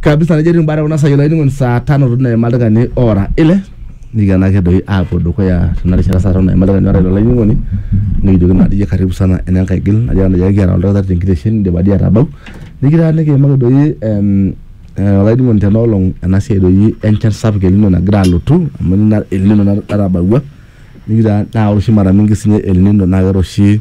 kabisa nejo etiu imbaa tekuna saai olainining'oni saa tano todua nena imaa ildaikani oora ile nikienaki doi aapuo dukuya tena rishata saa tano naima ildaikani oora ile olainining'oni nikijoki naa diyie karibu sana enee nkae gil najo nanu ekiata ng'ole oldakitari tenkitesheni indipa dii atabau nikitaa nikimaki doi em olainining'oni tena olong ena siai doi enchan sapuk e elnino nagira alotu amu ina elnino natabawua nikitaa naa ore oshi mara mingi sinye elnino naa keeta oshi.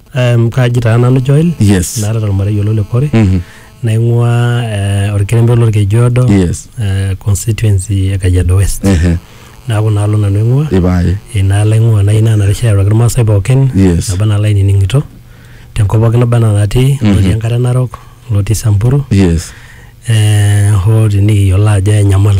Um, kaji taa nanu Joel Yes. naata tolmarei yiolo le Kore Mhm. naing'ua eh, orkerembe lorkejoodo Yes. eh, constituency e Kajiado West Ehe. naaku naalo nanu aing'ua Ipae. inaalo aing'ua nayieu naa narisha airoraki irmaasai pookin Yes. naba naa lainining'ito tenkop pookin naba naa natii lotii enkare narok lotii Samburu Yes. eh, hoo tinikiyiolo ajo enyamal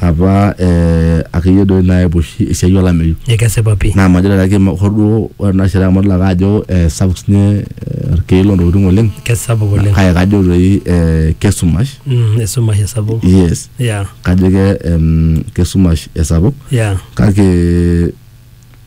apa eh, akeyie doi naepu oshi esiai olameyu Ye kesipa pi. naa majo tenaa kima- hoo duo ore ena sherehe amu adol ake ajo eh, sapuk sinye eh, irkeek loontokiting oleng Kesapuk oleng. kake kajo doi eh, kesumash Mm, esumash esapuk. yes Yeah, kajo ke em, kesumash esapuk yeah. kake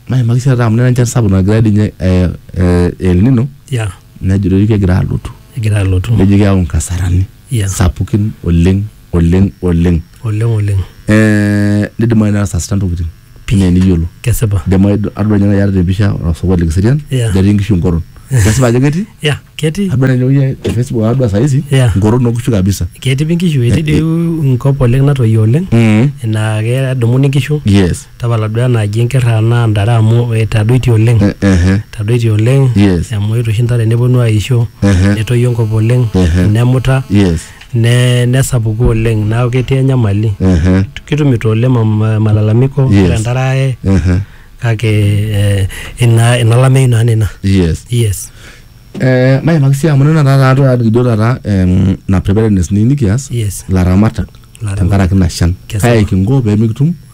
maimaki sii taata amu nena enchan sapuk nagira dii ninye eh, eh, El Nino Yeah. nejo doi kegira alotu Egira alotu. nejo keyau nkasarani Yeah. sapukin oleng oleng oleng oleng oleng eh, nidimayu nera saa sita ntokitin pina eniyiolo kesipa idimayu adol ninye naaji ata te pisha osokoni le kiserian Yeah. netii nkishu nkoron kesipa ajo ketii ya ketii adol naaji inewueji te facebook adol sahizi Yeah. nkoron onkishu kabisa ketii pi nkishu etii doi nkop oleng natoyio oleng Mm. naa kedumuni nkishu yes Tapala duo ena aji enker anaa ntare amu etadoitie oleng. Eh, ehe. Etadoitie oleng. Yes. Amu eitu oshi ntare neponu aisho. Ehe. Netoyu enkop oleng. Ehe. Nemuta. Yes. Ne, nesapuku oleng. Neaku ketii enyamali. Ehe. Kitumito oleng ma- malalamiko. Yes. Ore ntare ae Ehe. kake eh, ina ina olameyu naa nina. Yes. Yes. Eh, maimaki sii amu nena taata atua nikijo taata em, na preparedness nikias Yes. ilaramatak Ilaramatak. tenkaraki ina shan Kesipa. kai kinko pemikitum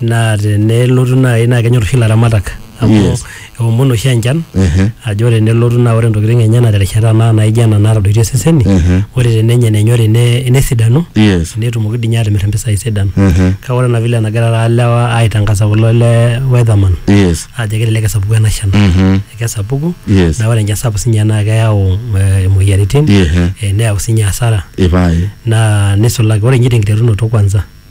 naa tenelotu naaji naa kenyor oshi ilaramatak amu Yes. eomon oshi enchan Ehe. ajo ore tenelotu naa ore ntokitin enyena terishata naa naijo ena naatadoitie iseseni Ehe. ore tenenya nenyori ne- nesidanu Yes. netumoki dii ninye atimir impisai sidan Ehe. kake ore ena vile nagira taa lewa aitangasa kulo le weatherman Yes. ajo kelelek esapuku ena shan Mhm. kesapuku Yes. naa ore enchan sapuk sinye naa keyau eh, imoyiaritin Ehe. eh, neyau sinye asara Ipae. naa nisulaki ore ninye tenkiterunoto kwanza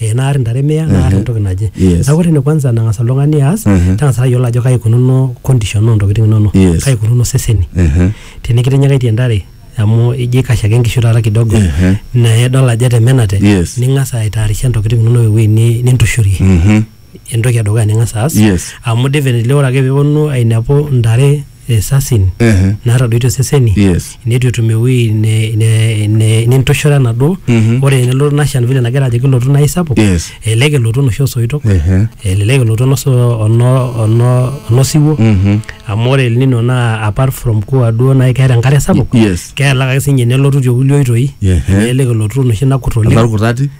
eh, naar intare mia naar Ehe. entoki naje Yes. neeku ore ene kwanza nang'as oltung'ani aas Ehe. tang'asa tayiolo ajo kai ikununo condition oontokitin inonok Yes. kai ikununo seseni Ehe. tenikitinyakaitie intare amu ijo ikash ake nkishu taata kidogo Ehe. naa idol ajo etemenate Yes. ning'as aitaarisha intokitin inonok ewueji ni- nintushurie Mhm. entoki edukuya ning'as aas Yes. amu definitely ore ake peeponu ainepu ntare isasin Ehe. naatadoitie iseseni Yes. neitu etum ewuei ne- ne- ne- nintushula enaduo Mhm. ore enelotu ina shan vile nagira ajoki ilotu naa isapuk Yes. elelek elotu enoshi osoitok Ehe. elelek elotu enoso- ono- ono- onosiwuo Mhm. amu ore El Nino naa apart from kuwa duo naa keeta enkare sapuk Yes. kelelek ake sinye nelotu tiokuli oitoi Ehe. elelek elotu enoshi nakut oleng Oltarkutati.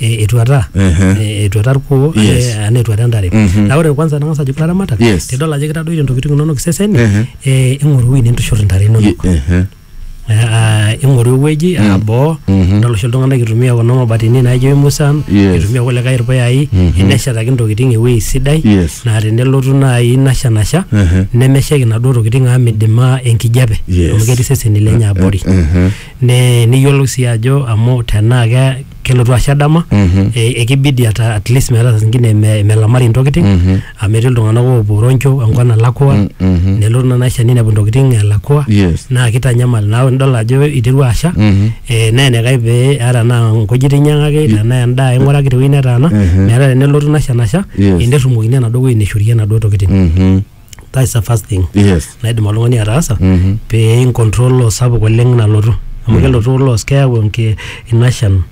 eh, etuata Ehe. eh, etuata irkuo Yes. eh, anaa etuata entare Mhm. na ore kwanza nang'as ajoki laramatak Yes. tidol ajo kitadoitie ntokitin inonok iseseni Ehe. eh, ing'oru ewueji nintushur intare inonok Ehe. Ah, ing'oru ewueji ah, boo Mhm. idol oshi iltung'anak itumia kuna mabatini naijo emusan Yes. itumia kulikae irpuyai Mhm. neshetaki ntokitin ewueji sidai Yes. naa tenelotu naaji nasha nasha Ehe. nemeshaiki naduo tokitin amu midima enkijape Yes. amu ketii seseni lenye abori Ehe. Ne- niyiolou sii ajo amu tenaa ke kelotu asha dama Mhm. e- ekibidi ata at least metaa saa zingine me- melamari ntokitin Mhm. amu etii iltung'anak oopuo roncho enkop nalakua Mm, mhm. nelotu nena shan ninepu ntokitin elakua Yes. naa kitanyamal naa nidol ajo iterua asha Mhm. eh, naa enekai pee ata naa nkujit inyiang'aki tenaa endaa ing'uraki tewueji netaana Mhm. metaa tenelotu ina shan asha Yes. eh, nerrumokini enaduo wueji neishorie enaduo tokitin Mhm. that is the first thing yes naidim oltung'ani ataasa Mhm. pee incontrol loss sapuk oleng nalotu amu kelotu loss keyau enki- ina shan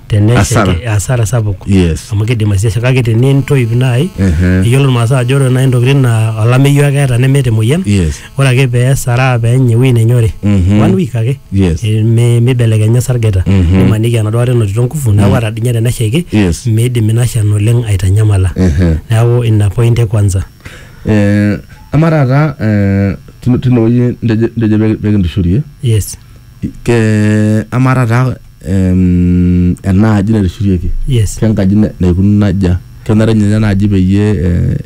tenesha Asara. ke- asara sapuk yes amu kidim asisha kake tenintoip naai Ehe. eyiolo irmaasai ajo ore naai ntokitin naa olameyu ake eeta nemeeta emoyian yes ore ake pee esaraa pee enya ewuei nenyori Mhm. one week ake yes Eh, mi- mibelekenya sargeta Mhm. nimaniki enaduo are enotito nguvu neeku ata dinye teneshaiki Yes. miidim ina shan oleng aitanyamala Ehe. neeku ina point e kwanza Eh, ama taata eh, tino- tinewueji nitejo nitejo pee- pee kintushurie yes ke- ama taata em, ena aji naitushurieki yes kenkaji na- naikununo aja kenare ninye ena aji peyie eh,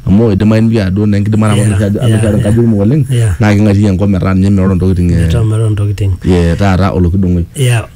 amu idimayu nikiata duo naa enkidimata Yeah, amu yeah, yeah. enkaji kumok oleng Yeah. naa king'atie enkop metaa ninye meoro ntokiting eh, metaa metaa ntokitin eh, taata olokidong'oi yeah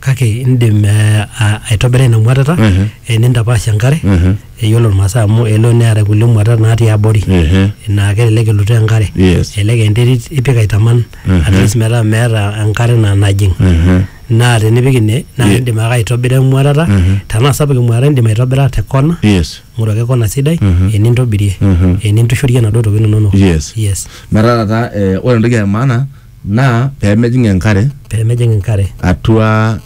kake indim eh, a- aitobira ina muatata Mhm. eh, nintapash enkare Mhm. eyiolo irmasaa amu elo neeta kulie muatat natii abori Ehe. naa kelelek elotu enkare Yes. elelek enterit ipik aitaman Mhm. at least metaa meeta enkare naa najing Mhm. naa tinipik ine naa Ye- indim ake aitobira emuatata Mhm. tenaa sapuk emuatata indim aitobira te kona Yes. ng'oru ake kona sidai Mhm. enintobirie Mhm. enintushurie enaduo tokitin inonok Yes. yes metaa taata eh, ore entoki emaana naa pemejing enkare pemejing enkare atua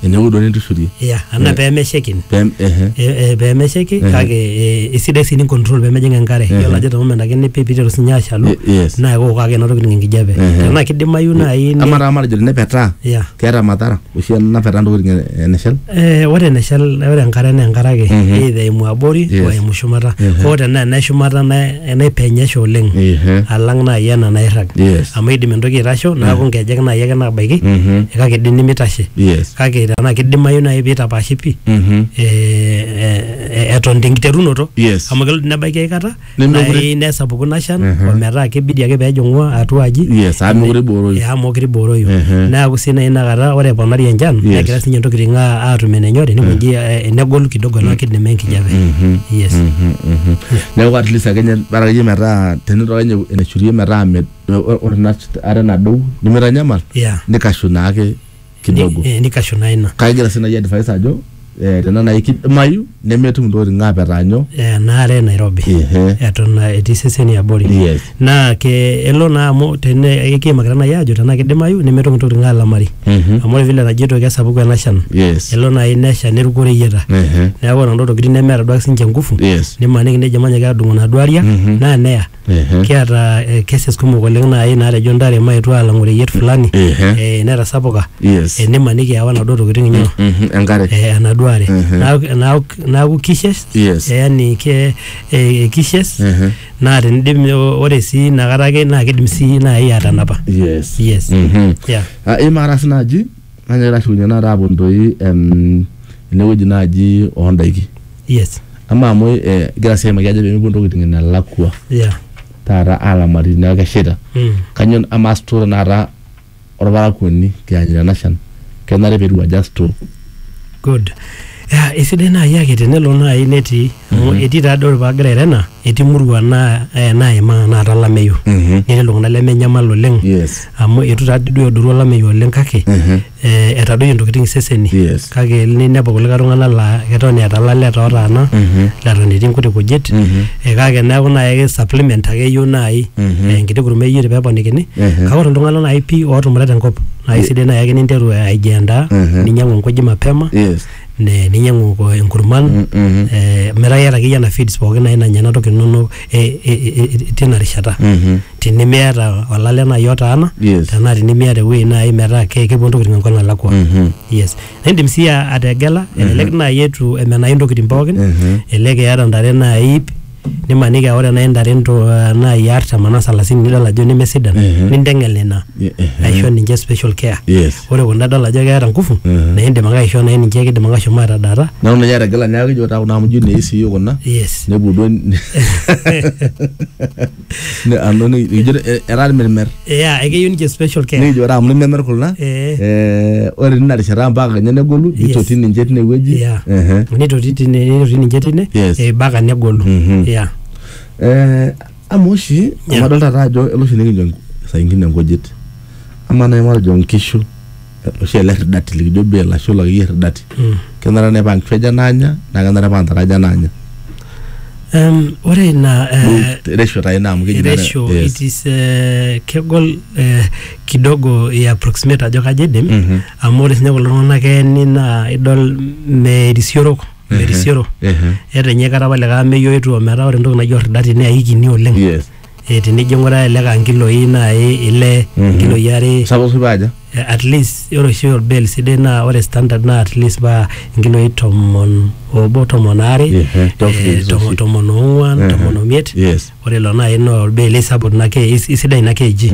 enewueji duo nintushurie ya anaa Eh. pemeshaken Pem- ehe. Eh, eh, pemesheki Ehe. kake eh, esidai sii nincontrol pemejing enkare Ehe. yiolo ajo te moment ake nipi piteru sinye ashalu Ye- yes. naa keok ake ina toki ninye enkijape Ehe. tenaa kidimayu nai ni- ama taa matejo tenepetaa ya keeta madhara oshi enapeta ntokitin e- eneshal Eh, ore eneshal ore enkare naa enkare ake Mhm. either eimu abori Yes. o eimu shumata Mhm. hoo tenaa eneshumata na- enaipenyesha oleng Ehe. alang naaji ena nairrag Yes. amu eidim entoki aitasho neeku nkejek naaji ake naabaiki Mhm. kake eidim nimitashe Yes. kake tenaa kidimayu naaji peitapaashi pii Mhm. eh, eh, eh, eton tenkiterunoto Yes. amu kelo nebaiki aikata Nemekure- Nai nesapuku ina shan ometaa kebidi ake pejing'ua atua aji Yes, amu mekure ibooroyu. Eh, amu mekure ibooroyu Ehe. neaku sii nai inakata ore eponari enchan Yes. negira sinye ntokiting a- atum enenye ore enekunji eh, enegolu kidogo naa kidim enkijape yes neeku at least akenye bara akeyie metaa tenidol akenye eneshurie metaa me- ore ina are nadou nimitanyamal Yeah. nikashu naake kidogo. Eh, nikashu naa ina Kagira sii nai advise ajo eh, tena nai kidimayu nemetum intokitin apetaa nyoo. eh, enaare e Nairobi Ehe. eton eh, etii seseni abori Yes. naa ke elo naa amu tene ekiimakita nai aajo tenaa kidimayu nemetum intokitin aalamari Mhm. amu ore vile najito kesapuku ena shan Yes. elo nai nesha neruko reyieta Ehe. neeku ore naduo tokitin nemeeta duake sinche ngufu Yes. nimaniki nejo manyaaki aadung'o naduo ariak Mhm. naa neya Ehe. kiata eh, cases kumok oleng naai naatejo ntare maetu aalang oreyiet fulani Ehe. eh, netasapuka Yes. eh, nimaniki ewa naduo tokitin inyoo Mhm, enkare eh, enaduo are Ehe. Naaku- naaku- naaku kishes Yes. eh, yani ke- eh, kishes Ehe. naa tenidim o- ore sii inakata ake naa kidim sii naai atanapa yes yes Mhm. yeah. Ah, imara sinaji Nanyaaka aashukunye taata aaponu toi em, enewueji naaji oondaiki. yes Amaa amu eh, igira sii aimaki ajo peemepuo intokiting enelakua yeah taata aalamat etii neeku keshaita. mm. Kanyoo, amaa store tenakata olparakuoni kianyita ena shan kenare peetiu aja store? good Ya, esidai naaji ake tenelo naaji netii amu etii taa doi ore paagira airo ena etii murua naa eh, naimaa naata olameyu netii iltung'anak lemenyamal oleng Yes. amu etu taa dii duo edoru olameyu oleng kake eh, etadoyie intokiting iseseni Yes. kake ninepu kulikae tung'anak laa keton eeta ilaleta otaana leton etii inkuti kujit eh, kake neeku naaji ake supplement ake eyieu naaji eh, enkiti kurma eyieu peponikini kake ore iltung'anak naaji pii otumore tenkop naa isidai naaji ake ninteru aijiandaa Mhm. ninyiang'u nkujit mapema yes ne- ninyiang'u ko- enkurman Mm, mhm. eh, metaa iyata akeyie ena feeds pookin nai nanya ena toki inonok eh, eh, eh, eh, tina rishata Mhm. tinimiata olale naaji otaana Yes. tenaa tinimiata ewueji naaji metaa ke- kepuo ntokitin enkop nalakua Mhm. yes na indim sii a- ategela elelek naaji etu emenai ntokitin pookin Mhm. elelek iyata ntare naaji iip nimaniki aa ore nai ntare nto- eh, nai artam anaa salasini nidol ajo nemesidan Mhm. ninteng'el nena Ye- ehe. aisho ninche special care Yes. ore kunda idol ajo keeta ngufu Mhm. naa indim ake aishoo nai ninche kidim ake ashom atadaata Nanu ninye ategela neaku kijo taa kuna amu ijo nee sii kuna. yes Nepuo duo. Ne- anu- ni- ijo, eh, etaa irmirmir. Yeah, ekeyieu ninche special care. nikijo ore amu nememir kuna Eh. eh, ore tina rishata mpaka kenya negolu Yes. nitoti ninche tine wueji Yeah. Ehe. Nitoti tine, nitoti ninche tine. Yes. eh, Mpaka negolu. Mhm. Yeah. Eh, ama oshi Yeah. amu adol taata ajo elo oshi nikijo saa ingine nkujit ama nai matejo nkishu oshi ele ridati likijo bale ashu lakeyie ridati Mm. kenare naipaa nkifeja naanya naa kenare paa ntare aja naanya Em, ore ina eh, ratio taa ina amu keji naa- ratio yes. it is eh, kegol eh, kidogo i approximate ajo kaji idim Mhm. amu ore sinye kulo tung'anak keeni naa idol merisiorok merisioro Ehe. eeta ninye kata apa likae ameyu oetuo metaa ore entoki naji orridati naa ikini oleng yes eh, tenijo ing'uraa ele kaa nkiloi naai ile nkiloi are Sapuk oshi paaja. eh, at least ore oshi orbel sidai naa ore standard naa at least paa nkiloi tomon obo tomon aare Ehe, eh, tof- eh, tof- tomo- tomon oong'uan Ehe, tomon omiet yes. ore ilo naaji naa orbeli sapuk ina ke- is- isidai ina keji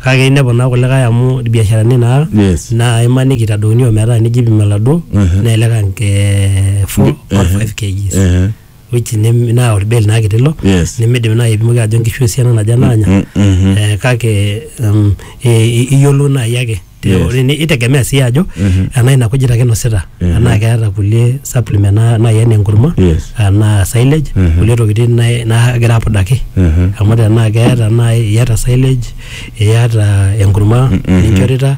kake inepu naa kulikae amu biasharani naa Yes. naa imaniki itadouni ometaa nijo aipim oladuo Ehe. naa eleka nke 4 or Ehe. 5 kgs Ehe. which nem- naa olbel naa kiti ilo Yes. nimidim naaji aipimoki ajo nkishu esiana naje anaanya Mm, mhm. eh, kake um, eh, iyiolou naaji ake Te- Yes. ore ni- itegemea sii ajo Mhm. enaa ina kujita ake inosita Mhm. enaa keeta kulie supplement na- naaji enaa enkurma Yes. anaa silage Mhm. kulie tokitin nai- naagira apudaki Mhm. amu tenaa keeta naaji iyata silage iyata enkurma Mhm. ninchorita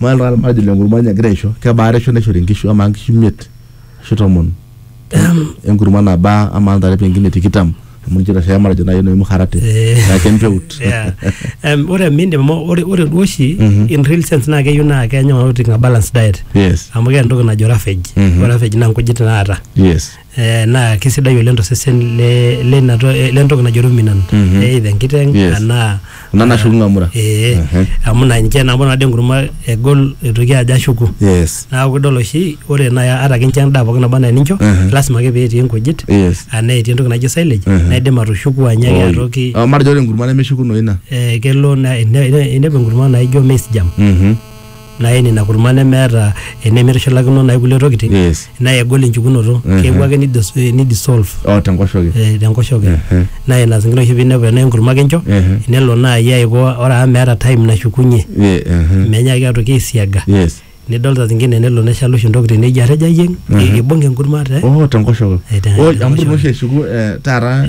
Mayiolo tenakata matejo ile nkurma ninye egira aisho, kebaa ereisho naishori nkishu, amaa nkishu imiet ashu tomon, enkurma nabaa, amaa ntare pee enkine tikitam, amu ninche oitosheya matejo naaji enoshi muharate ake empeut. Yeah. Em, ore miindim amu ore ore duo oshi in real sense naa keyieu naa kenya ntokitin a balanced diet Yes, amu keeta entoki najo ravage Mhm. ore ravage naa nkujit naata yes. eh, naa kisidai oleng tosesen le- leina to- eh, lentoki najo ruminant Mhm. either enkiteng Yes. anaa Ena nashuku ng'amura. ee Mhm. amu naa ninche nabo nade enkurma egol etoki ajo ashuku yes neeku kidol oshi ore naai ata kincho endaa pookin naba anaa enincho Mhm. lasima ake pee etii nkujit yes anaa etii entoki najo silage Mhm. naidim atushuku anya ake atoki Ah, matejo ore enkurma nemeshukunoyu ina eh, kelo na- ine- ine- inepu enkurma naijo maize jam Mhm. naye nena kurman nemeeta enemitushulakino naye kulie tokitin Yes. naa egol enchukunoto Mhm. keeku ake nidis- eh, nidissolve Oh, tenkoshoke. eh, tenkoshoke Ehe. naa ina singida oshi piinepu enaa enkurma kincho Ehe. nelo naaji aiko ore amu meeta time nashukunye Ye- ehe. menyaaki atoki aisiaga Yes. nidol saa zingine nelo neshalu oshi ntokitin neji atejo ayieng Mhm. ibung enkurma te Oh, tenkoshoke. Eh, te- Oh, amu tenkoshoke. oshi eshuku eh, taata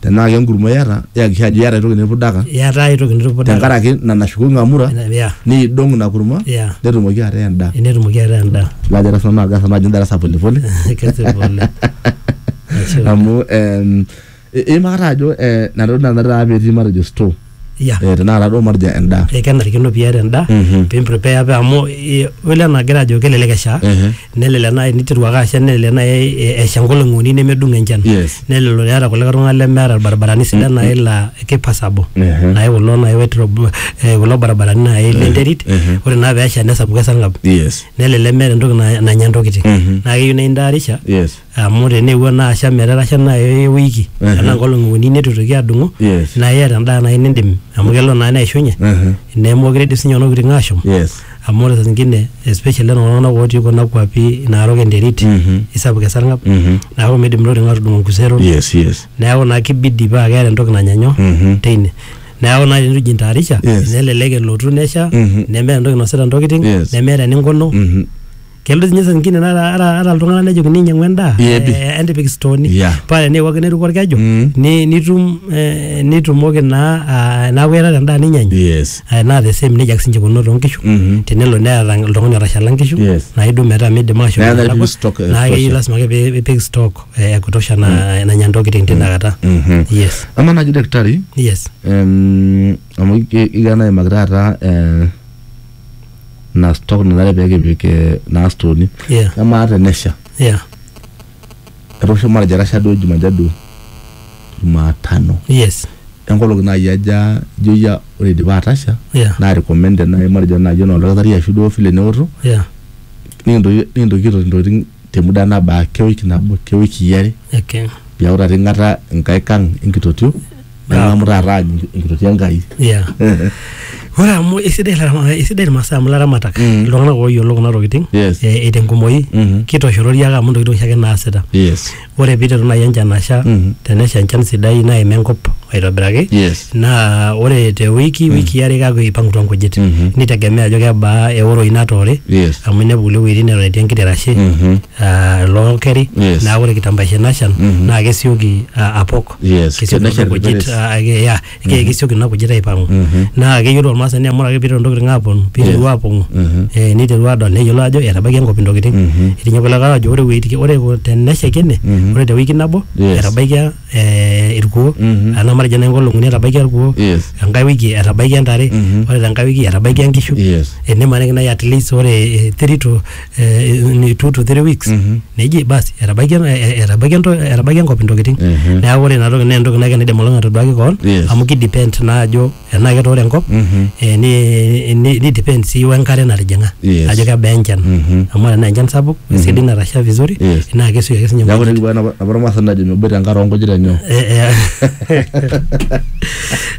tenaa ke enkurma iyata iyakikisha ajo iyata aitoki nitupudaka iyata ai toki nitupudaka tenkaraki ina nashuku ng'amura Ina- yeah. niidong ina kurma Yeah. netumoki ataa endaa netumoki ataa endaa lajo ira sinanu agasa najo indarasa polepole Kesipa oleng. Ashe oleng. amu em, i- imakata ajo eh, nena tokitin nena taata petii matejo store Yeah. eh, tenakata duo matejo endaa Eh, kenarikino piata endaa Mhm. pim prepare apa amu eh, ore enagira ajo kelelek esha Ehe. nelelek nai niteru ake asha nelelek nai eh, esha nkolong'i uni nemedung enchan Yes. nelelek eeta kulikae tung'anak lemeeta irbaribarani sidan nai laa kipasabo Ehe. nai kulo nai wet rob- eh, kulo baribarani nai lenterit ehe. ore naa peesha nesapuku esarng'ab yes nelelek meeta entoki na- nanya ntokitin Mhm. naa keyieu naa intaarisha yes amu teneewuo naa asha metarasha naa ewiki Mhm. enaa nkolong'i uni neitu itoki adung'o Yes. naa iyata endaa naaji nindim amu kelo naa neishunye Mhm. nemeekure idim sinye kuna tokitin aashom Yes. amu ore saa zingine especially enaa iltung'anak ootii kuna kuapi naarok enterit Mhm. isapuk esarng'ab Mhm. neeku miidim intokitin aatudung'o nkuseron Yes, yes. neeku naa kibidi paa keeta entoki nanya nyoo Mhm. teine neeku naa tenitu ijintayarisha Yes. nelelek elotu nesha Mhm. nemeeta entoki inosita ntokitin Yes. nemeeta eninkunuu Mhm. kelotu ninye saa zingine nara- ara ara iltung'anak nejokini inyiang'u endaa Yepi. eh, entipik stooni Yeah. paa teniwuaki neruko orkeju Mm. ni- nitum eh, nitumoki naa ah, naaku iatata endaa ninyanya yes Eh, naa the same nejia ake sinche kuno toonkishu Mhm. tenelo neeta oltung'ani otashala nkishu Yes. naa idumu metaa midim ashom Neeta enelakwa, ipik stock, eh, naa kutosha. keyieu lasima ake pee ipik stock eh, ya kutosha na- nanya ntokiting tinakata Mhm. yes ama naji daktari yes em, amu igira naimaki taata eh, ina stock nanare pee kipik eh, naa stooni Yeah. amaa tenesha yeah etoosho matejo etasha duo jumatatu jumatano yes enkolong naaji aja ijo iyia ore idipa atasha Yeah. naa recommended naaji matejo naaji enaa oldakitari ashu duo vile neoto yeah nikintoki nikintoki aitoti intokitin te muda nabaa ake ewiki nabo, ke wikii are okay. piaku taata ing'ata nkaik ang enkitotio neng'amu taata aanyu enkitotio Enkai. yeah. ore amu esidai ilarama- esidai irmasaa amu ilaramatak iltung'anak ooyiolo kuna tokitin Yes. eh, tenkumoi kitoshorori ake amu intokitin oshiake naasita Yes. ore piiteru nai enchan asha Mhm. tenesha enchan sidai naim enkop aitobiraki Yes. naa ore te wiki wikii are keaku eipang'utua nkujit Mhm. nitegemea ajo kebaa eoroi natoore Yes. amu inepu kulie wueitin neton etii enkiti rashe Mhm. ah, loo keri Yes. naa ore kitambaisho ina shan Mhm. naa kesioki ah, apok Yes, kesioki kenesha apok nkujit irkeres. ah, ake, yeah. ke- kesioki ina kujita aipang'u naa keyiolo olmaasani amu ore ake piiteru intokitin aaponu piiteru aapong'u eh, niteru adol neyiolo ajo etabaikia enkop intokitin etinye kulikae ajo ore wuejitin ore ku- teneshaiki ene ore te wiki nabo Yes. etabaikia eh, irkuo anaa matejo naa enkolong uni etabaikia irkuo Yes. enkae wiki etabaikia intare ore tenkae wiki etabaikia inkishu Yes. enimaniki nai at least ore eh, three to eh, ni two to three weeks neji basi etabaikia eh, etabaikia ento- etabaikia enkop intokitin Mhm. neeku ore ina toki naa entoki nake naidim oltung'ani atoduaki koon Yes. amu kidepend naa ajo enaa ketooro enkop Mhm. eh, ni- ni- ni depend sii wenkare natijing'a Yes. ajo kebaa enchan Mhm. amu ore naa enchan sapuk sidai natasha vizuri Yes. naa kesioki ake sinye neeku enkop. tenikua napa napa irmaasai najo meboita enkare oonkujit enyo Eh, eh.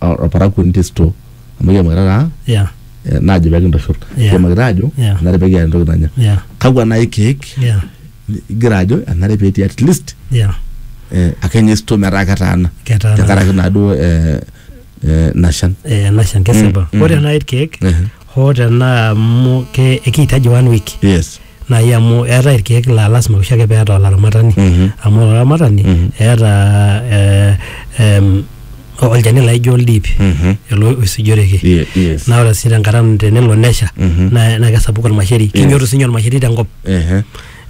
o- olparakuoni te store amu ekiamakita taa yeah eh, naajo pee kintoshor Yeah. kiamakita ajo Yeah. enare pee kiata entoki nanya yeah kakwa naaji keek yeah igira ajo enare pee etii at least yeah eh, ake nye store metaa ketaana Ketaana. tenkaraki naaduo eh, eh, nashan eh nasha nkesipa Mm, mm. ore naaji irkeek Mhm. hoo tenaa amu ke- ekiitaji one week yes nai amu eetae irkeek laa lasima oshi ake peeta olaramatani Mhm. amu ore olaramatani Mhm. eeta eh, em, olchani laijo oldiip Mhm. ilo oisujoreki Ye- yes naa ore sii tenkata tenelo nesha Mhm. naa naa kesapuk olmasheri kinyoru sinye olmasheri tenkop Ehe.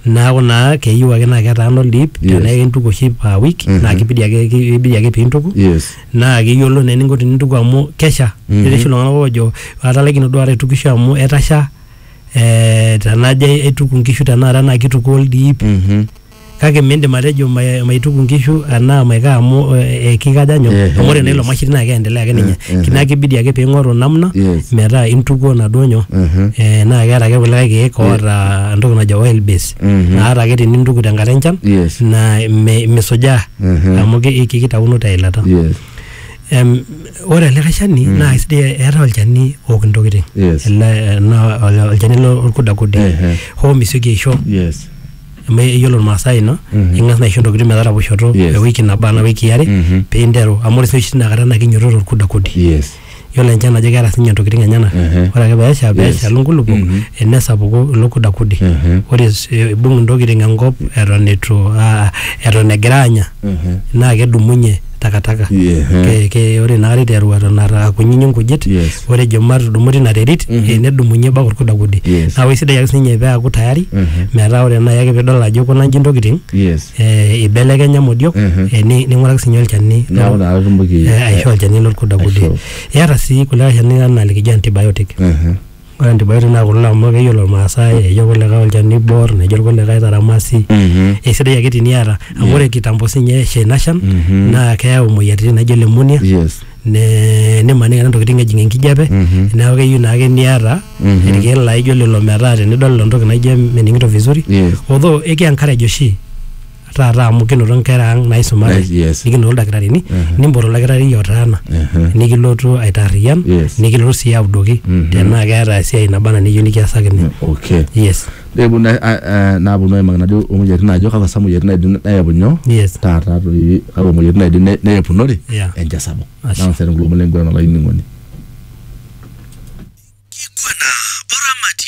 neeku naa keyieu ake naa ketaana oldiip Yes. tenaa intuku oshi per week Mhm. naa kibidi ake kibidi ake piintuku yes naa keyiolo naa eninko tinintuku amu kesha Mhm. netii oshi iltung'anak oojo atalaikine duo taata aitukisho amu etasha eh, tenajo aituku inkishu tenakata naa kituku oldiip Mhm. kake mindim atejo ma- maituku inkishu anaa maiko amu eh, eh, kikaja nyoo Eh, amu ore eh, naa ilo yes. mashini naa keendelea ake ninye Eh, eh. naa kibidi ake piing'oru namna Yes. metaa intukuo naduo nyoo Mhm. eh, naa keeta ake kulikae keek oota entoki najo oil base Mhm. naata ake tinintuku tenkata enchan Yes. naa mi- misujaa Ehe. amu ki- ki- kitauno te ilata Yes. Em, ore ele shani naa sidai eeta olchani ook intokiting Yes. Ele, eh, naa ol- olchani lorkudakude Ehe. hoo misioki aisho Yes. amu eyiolo irmaasai no Mhm. ing'as naa aisho intokiting metaraposhoto Yes. ewiki nabo ana wiki are Mhm. pee interu amu ore sii oshi tinakata naa kinyototo orkudakude Yes. yiolo enchan najo keeta sinye ntokitin enyenak Mhm. ore ake peesha Yes. peeshalu nkulupuok Mhm. enesapuku ilo kudakudi Mhm. ore s- eh, ibung intokitin enkop eton itu ah, eton egira anya Mhm. naa kedumunye takataka Yeah. Ke- ke- ore inakata iteru eton aa kunyinyik nkujit Yes. ore ejo matudumu tina terit Mhm. eh, nedumunye mpaka orkudakudi Yes. naa ore sidai ake sinye peaku tayari Mhm. metaa ore nai ake pidol ajo kuna nji ntokitin Yes. eh, ibelekenya imodiok Mhm. eh, ni- ning'uraki sinye olchani neeku naa ketumoki eh, aisho olchani lorkudakude aisho. eata sii kulie shani anaa likijo antibiotic Mhm. ore antibiotic naa kulo amu keyiolo irmaasai ejo kulikae olchani oibor nejo irkulikae taramasi Mhm. eisidai ake tiniata amu ore kitambo sinye shinashan Mhm. naa keyau imoyiaritin naijo lemonia yes ne- nimaniki ena ntokitin ejing enkijape neeku keyieu naake niata irkeek laijo lelo metaa tenidol ilo ntoki naijo emening'ito vizuri Yes. although eki encourage oshi taata amu kinoto nkera ang naisumate Nice, yes. nikinoto ildakitarini nimpotu oldakitari otaana nikilotu aitaarriyian Yes. nikilotu sii audoki tenaa keeta esiai naba anaa niyieu nikiasakini okay yes nepuonu a- a- a- napuonu aimaki najo omoyiaritin ajo kakwa sa moyiaritin naidim neyapu nyoo Yes. taata toi kakwa moyiaritin naidim ne- neyapunore Yeah. enche sapuk Ashe. naa sera nkulomo lenguran olainining'oni Kikwana, Boramati